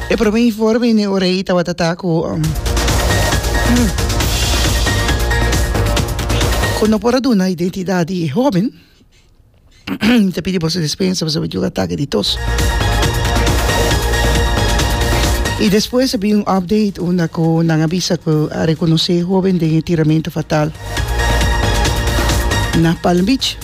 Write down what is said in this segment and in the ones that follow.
E prome informe ne ora ei tabata ta ku ku no por a duna identidat di e hoben mi ta pidi boso dispensa pasobra mi tin un atake di tos i despues a bin un update unda ku nan a bisa ku a rekonosé e hoben den e tiramentu fatal na Palm Beach.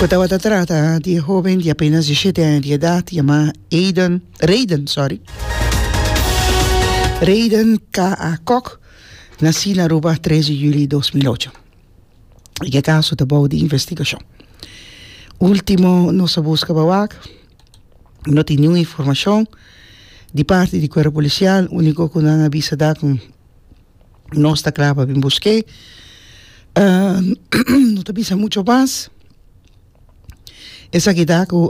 Cu tabata trata di e hoben di apenas diecisiete aña di edad yama Aiden, Rayden, sorry, Rayden K.A. Kok, naci na Aruba tres di juli dos mil ocho. I ke caso ta bou di investigacion. Ultimo nos a busca pa wak, no tin niun informacion di parti di cuerpo policial, unico cu nan a bisa ta cu nos ta kla pa bin busk'é no ta bisa mucho mas esaki ta ku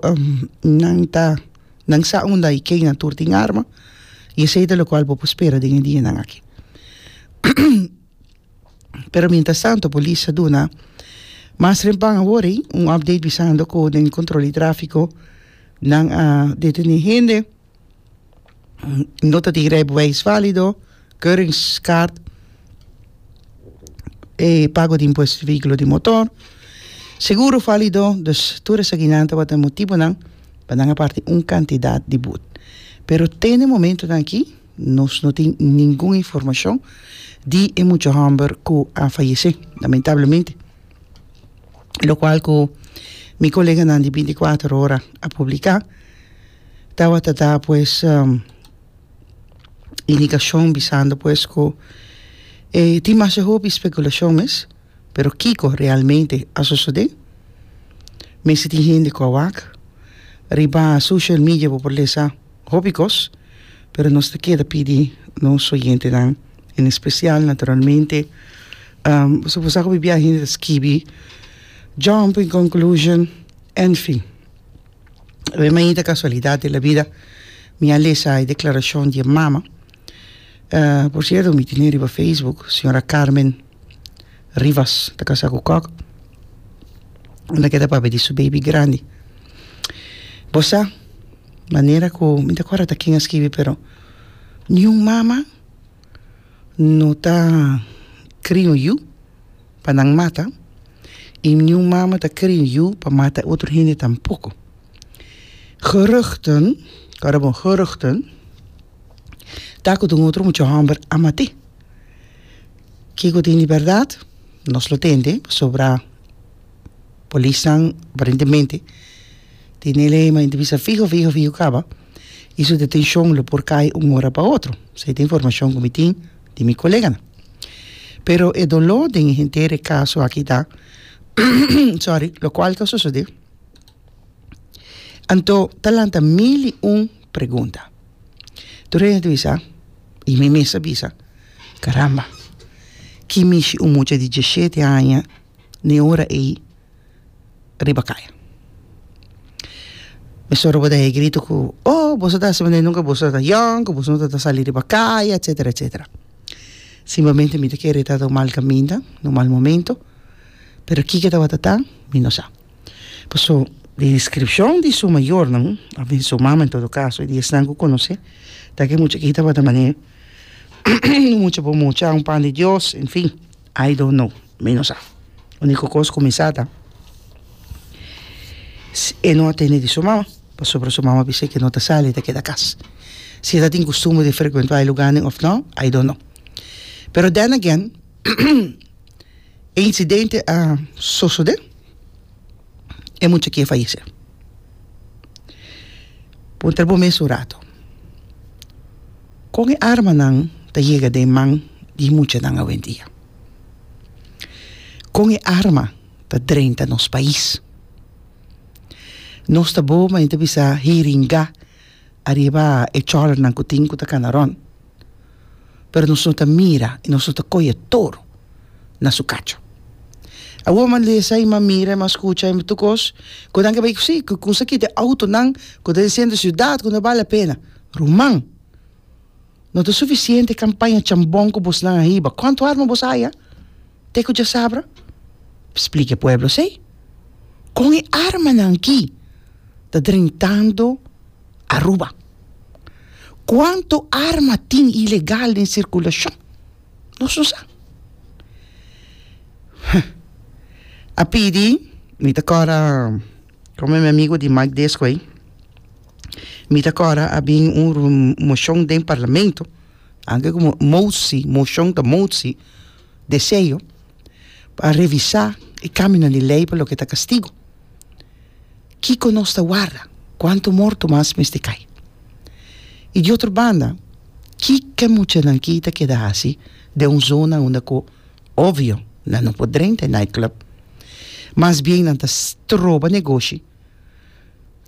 nan ta nan sa unda i kena tur tin arma i esei ta lokual bo por spera den e dianan aki pero mientras tanto polis a duna mas rempan awori un update bisando ku den kontrol di trafiko nan a detene hende. nota di rijbewijs válido, keuringskaart, e pago di impuesto di vehículo di motor, seguro válido, dus tur esakinan tabata e motibonan pa nan a parti un kantidad di bud. Pero te na e momentonan akí nos no tin ningun informashon di e mucha hòmber ku a fayesé, lamentablemente, lokual ku mi koleganan di binti kuater ora a publiká. Tabata da pues indikashon bisando pues ku e tin masha hopi spekulashon mes pero kiko realmente a sosodé mester tin hende ku a wak riba social media bo por lesa hopi kos pero nos ta keda pidi nos oyentenan en especial naturalmente boso por sa ku pipia hende ta skibi jump in conclusion en fin. Awe mainta casualidad di la vida mi a lesa e declaracion di e mama. Uh, por cierto, mi tene riba Facebook, señora Carmen Rivas, ta casa cu Kok. Anda keda papi di su baby grandi. Bosa, manera cu, mi ta acuerda ta ken a skibi, pero ni un mama no ta cria un yu pa nan mata, i niun mama ta krin yu pa mata e otro hende tampoko. Geruchten, ku a rabor geruchten, ta ku ta un otro mucha hòmber a mat'é. Kiko tin di bèrdat? Nos lo tende, pasobra polisnan aparentemente tin e lei, ma e ta bisa fiho, fiho, fiho kaba, i su detenshon lo por kai un ora pa otro. Esei ta informashon ku mi tin. di mi koleganan. Pero e doló den henter e kaso aki ta sorry lokual ta sosodé anto ta lanta mil i un pregunta. Tur hende ta bisa, i mi mes a bisa, karamba, ki mishi un mucha di diesshete aña den ora ei riba kaya mi soro bo ta hei grito ku oh boso ta hasi manera nunka boso ta yòn ku boso no ta sali riba kaya etsetera etsetera simplemente mi ta kere ta un mal kaminda un mal momento pero kiko tabata tan mi no sa paso di descripcion di su mayornan òf di su mama en todo caso y di esnan ku konos'é ta ke mucha aki tabata manera un mucha bo mucha un pan di Dios en fin. I don't know, mi no sa. Unico cos cu mi sa ta si e no a tene di su mama pasobra su mama a bisa que no ta sali, ta keda cas. Si e ta tin costumbre di frecuenta e lugarnan of no, I don't know. Pero then again e incidente a sosode. e mucha ke fayesé. Puntra bo mes un ratu, kon e armanan ta yega den man di muchanan awendia? Kon e arma ta drenta nos pais? Nos ta bo, ma e ta bisa hiringá. ariba e chòlnan ku tin ku ta kana rònt, pero nos no ta mira i nos no ta koyo toro na su kacho. Awor mi a lesa i mi a mira i mi a skucha i mi tur kos ku nan ke bai ku si, ku kungsa kita e outonan ku ta den senter siudat ku no bal la pena. Ruman, no ta sufisiente kampaña chambon ku bosnan a hiba. Kuantu arma bos haya? te ku dja sabra? Splika e pueblo esei. Kon e armanan aki ta drentando Aruba? Kuantu arma tin ilegal den sirkulashon? Nos no sa. Huh. A pidi, mi ta kòrda, kòmen mi amigu di Mike Desco ei, mi ta kòrda a bin un moshon den parlamento, anke ku mosi, moshon ta mosi, deseo pa revisá e kámionan di lei pa loke ta kastigu. Kiko nos ta warda? Kuantu morto mas mester kai? I di otro banda, ke ke muchanan ki ta keda hasi den un zona unda ku obvio nan no por drenta e nightclub? Mas bien nan ta stroba negoshi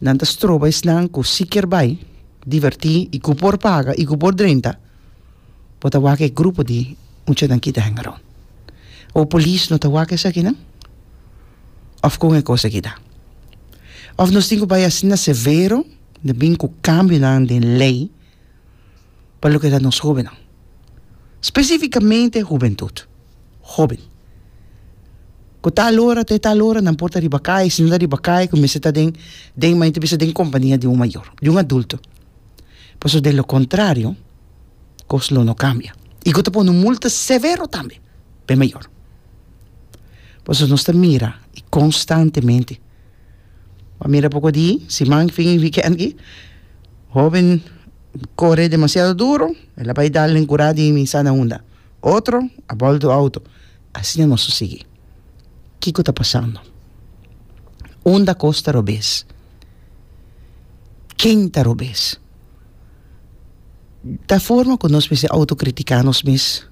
Nan ta stroba esnan cu si kier bay, diverti y cu por paga y cu por drenta, bo ta wak e grupo di muchanan kita hang around. Bo polis no ta wak esakinan? Of con e cos aki ta? Of nos tin cu bay asina severo den bin cu cambionan den ley? pa loke ta nos hobennan, spesifikamente hubentut, hoben, ku tal ora te tal ora nan por ta riba kai, si nan ta riba kai ku mester ta den den mayor ta bisa den kompania di un mayor, di un adulto, pasobra de lo kontrario kos lo no kambia i go ta pone un multa severo tambe pa e mayor, pasobra nos ta mira konstantemente. Bo a mira poko di siman fin y weekend aki hoben core demasiado duro el a bay dal den cura di mi sana unda otro a bal tu auto asina nos a sigui kico ta pasando unda cos ta robes ken ta robes. Ta forma ku nos mester autokritiká nos mes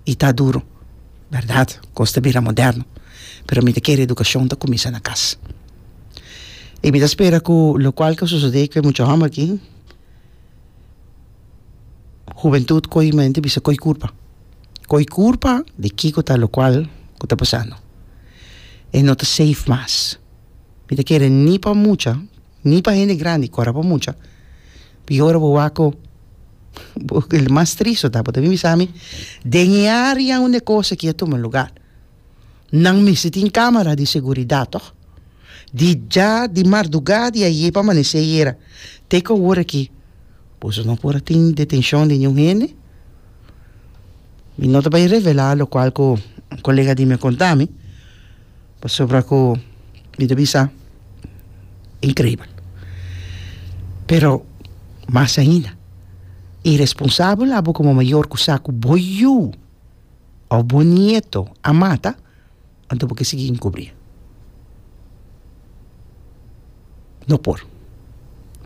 i ta duru. Bèrdat, kos ta bira moderno, pero mi ta kere edukashon ta kuminsá na kas. I mi ta spera ku lokual ke sosodé ku e mucha hòmber aki, hubentut ko'i mente bisa ko'i kurpa, ko'i kurpa di kiko ta lokual ku ta pasando. E no ta seif mas. Mi ta kere ni pa mucha, ni pa hende grandi ku ora pa mucha. Mi ora bo wak-o, el mas tris lo ta, bo ta bin bisa mi, den e área unda e kos akí a tuma lugá, nan mester tin kámara di seguridat tòg? Di dja, di mardugá di ayé pa amanesé ayera te ku awor akí, boso no por a tin detenshon di niun hende? Mi no ta bai revelá lokual ku un kolega di mi a konta mi. Pasobra ku mi ta bisa inkribel. Pero mas ainda, iresponsabel abo komo mayor ku sa ku bo yu òf bo nieto a mata, anto bo ke sigui inkubrí. No por.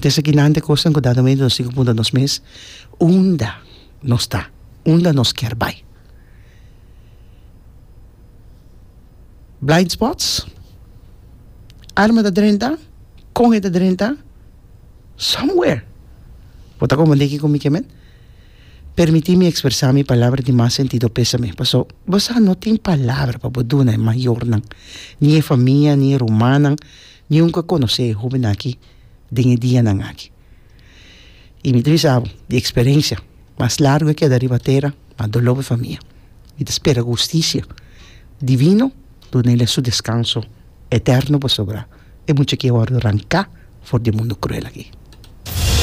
Te esakinan ta e kosnan ku dado momento nos tin ku puntra nos mes, unda nos ta? Unda nos kier bai? Blind spots, Arma ta drenta, con e ta drenta, somewhere. Bo ta comprende kico mi ke men? Permiti mi expresa mi palabra di mas sentido pesame, paso bo sa no tin palabra pa bo duna e mayornan, ni e famia, ni e rumannan, ni un ke conoce e hobennan aki den e dianan aki. Y mi ta bisa bo di experencia, mas largo e keda riba tera, Pa doló mi famia. Mi ta spera ku hustisia divino duna el e su deskanso eterno, pasobra e mucha ki a wòrdu ranká for di e mundu kruel akí.